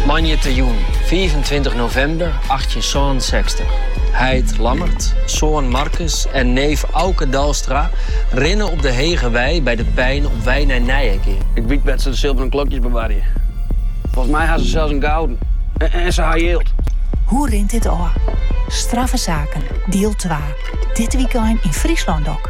Moandeitejûn 26 novimber 1866. Heit Lammert, soan Markus en neef Auke Dalstra rinne op de Hege Wei by de Pein op wei nei Nijegean. Ik wyt wêr't se de silveren klokjes bewarje. Folgens my ha se sels in gouden. En se ha jild. Hoe rint dit ôf? Strafsaken, diel twa. Dit wykein yn Fryslân-Dok.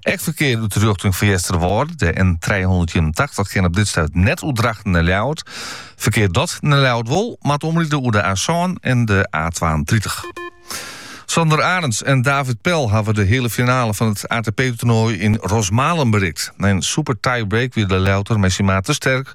Ek ferkear út 'e rjochting fan Easterwâlde, de N trijehûndertienentachtich, kin op dit stuit net oer Drachten nei Ljouwert. Ferkear dat nei Ljouwert wol, moat omride oer de A-sân en de A-twaentritich. Sander Arends en David Pel hawwe de heale finale fan it ATP-toernooi yn Rosmalen berikt. Nei in super tiebreak wie de Ljouwerter mei syn maat te sterk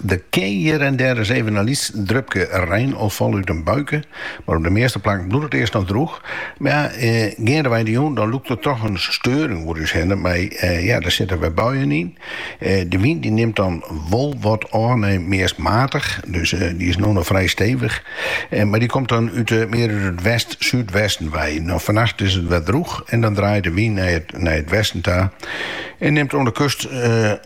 Dirk, hjir en dêr is even in lyts drupke rein al falt út in buike, mar op de measte plakken bliuwt it earst noch drûch. Mar ja, geandewei de jûn dan lûkt der toch in steuring oer ús hinne, mei ja, der sitte wer buien yn. De wyn dy nimt dan wol wat ôf nei meast matich, dus dy is no noch frij stevich, mar dy komt dan út mear út it west-súdwesten wei. No fannacht is it wer drûch en dan draait de wyn nei it westen ta en nimt oan de kust.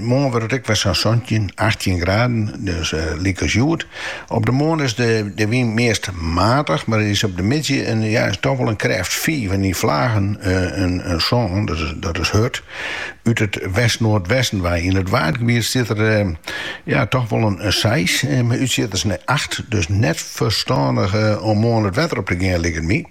Moarn wurdt it ek wer sa'n santjin, achttjin graden, dus lyk as hjoed. Op de moarn is de wyn meast matich, mar der is op de middei toch wol in krêft fiif en yn flagen in sân, dat is hurd, út it west-noardwesten wei. Yn it waadgebiet stiet der toch wol in seis, mei útsjitters nei acht, dus net ferstannich om moarn it wetter op te gean, liket my.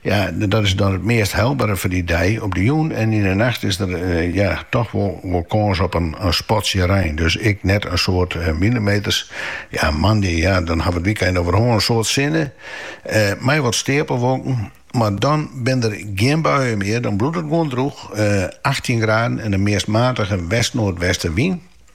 Ja, dat is dan it meast helbere foar dy dei. Op de jûn en yn de nacht is der ja toch wol kâns op in spatsje rein, dus ek net in soad millimeters. Ja, moandei, ja, dan hawwe wy it wykein oer, hoar, in soad sinne, mei wat stapelwolken, mar dan binne der gjin buien mear, dan bliuwt it gewoan drûch, achttjin graden en in meast matige west-noardweste wyn.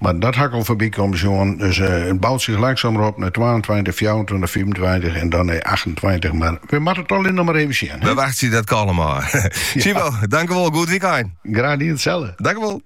Mar dat ha ik al foarby komme sjoen. Dus it bout sich langsamer op nei twaentweintich, fjouwerentweintich, fiifentweintich en dan nei achtentweintich. Mar we moatte it allegear noch mar even sjen. We wachtsje dat kalm ôf. Sibo, dankjewol. Goed wykein. Graach dien, itselde. Dankjewol.